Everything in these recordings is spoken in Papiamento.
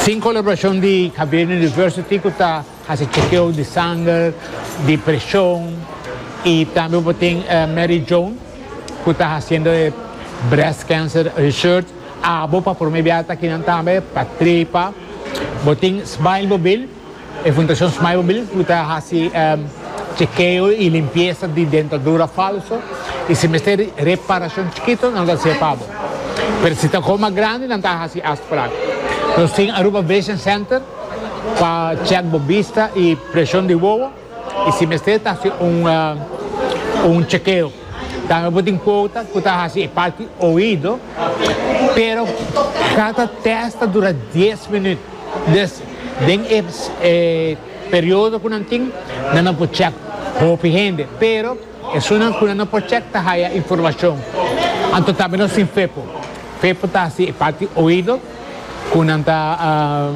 Sin colaboracion di Xavier University cu ta haci chekeo di sanger, di presion y tambe bo tin Mary Joan cu ta haciendo e Breast Cancer Research abo pa prome bia ta aki nan tambe pa trepa. Bo tin Smile Mobil. E Fundacion Smile por Believe lo ta haci chekeo y limpiesa di dentadura falso y si mester reparacion chikito nan lo ta hacia pa bo. Pero si ta coma grandi nan ta haci afspraak. Nos tin Aruba Vision Center pa check bo bista y presion di wowo. Y si mester ta haci un chekeo. Tambe bo tin cuota cu ta haci e parti oido, pero cata test ta dura dies minuut. Dus den e periodo cu nan tin nan a por check hopi hende, pero esunnan cu nan no por check ta haya informacion. Anto tambe nos tin fepo. Fepo ta haci e parti oido. cu nan ta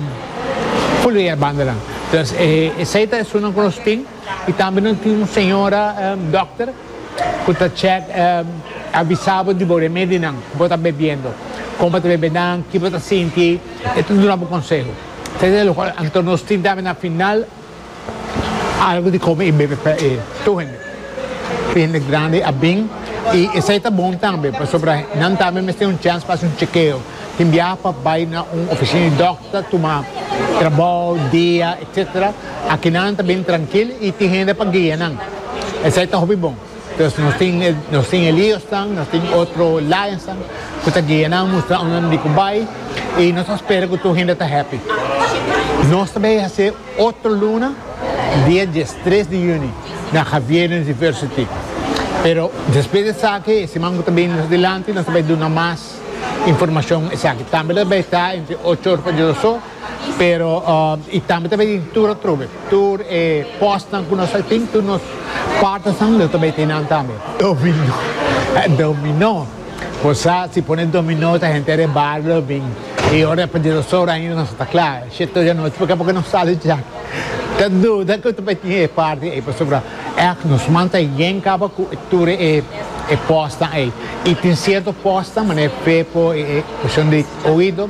foluea e bandanan. Entonces esey ta esunnan cu nos tin y tambe nos tin un señora dokter cu ta check avisa bo di bo remedi nan cu bo ta bebiendo, con bo ta bebe nan, ki bo ta sinti, e ta duna bo conseho. Esey ta e loke anto nos tin tambe na final. Algu di kome i bebe pa e tur hende, pa e hende grandi a bin i esei ta bon tambe pasobra nan tambe mester un chèns pa hasi un chekeo. Tin biaha pa bai na un ofisina di dòkter, tuma trabou, dia, etcetera. Aki nan ta bin trankil i tin hende pa guia nan. Esei ta hopi bon. Pues nos tin e nos tin e liosnan, nos tin otro lionsnan cu ta guia nan mustra unda nan di cu bay y nos ta spera cu tur hende ta happy. Nos ta bay haci otro luna dia diestres di juni na Javiernes Diversity pero despues di esaki e siman cu ta bini mas dilanti nos ta bay duna mas informacion esaki tambe lo ta bay ta entre ocho ora pa dies ora so. Pero i tambe ta bay tin tur atrobe, tur e postnan cu nos ta tin, tur nos partnersnan lo ta bay tin nan tambe. Dominó, eh, dominó. Bo sa, si pone dominó ta henter e bario lo bin. I ora pa dinossauro ainda nos no ta cla. Shito ya nochi porque abo no sali djak. Ta duda cu ta bay tin e parti ey pasobra ech nos man ta yen caba cu tur e e postnan ey. I tin cierto postnan, manera fepo, e e cushon di oido.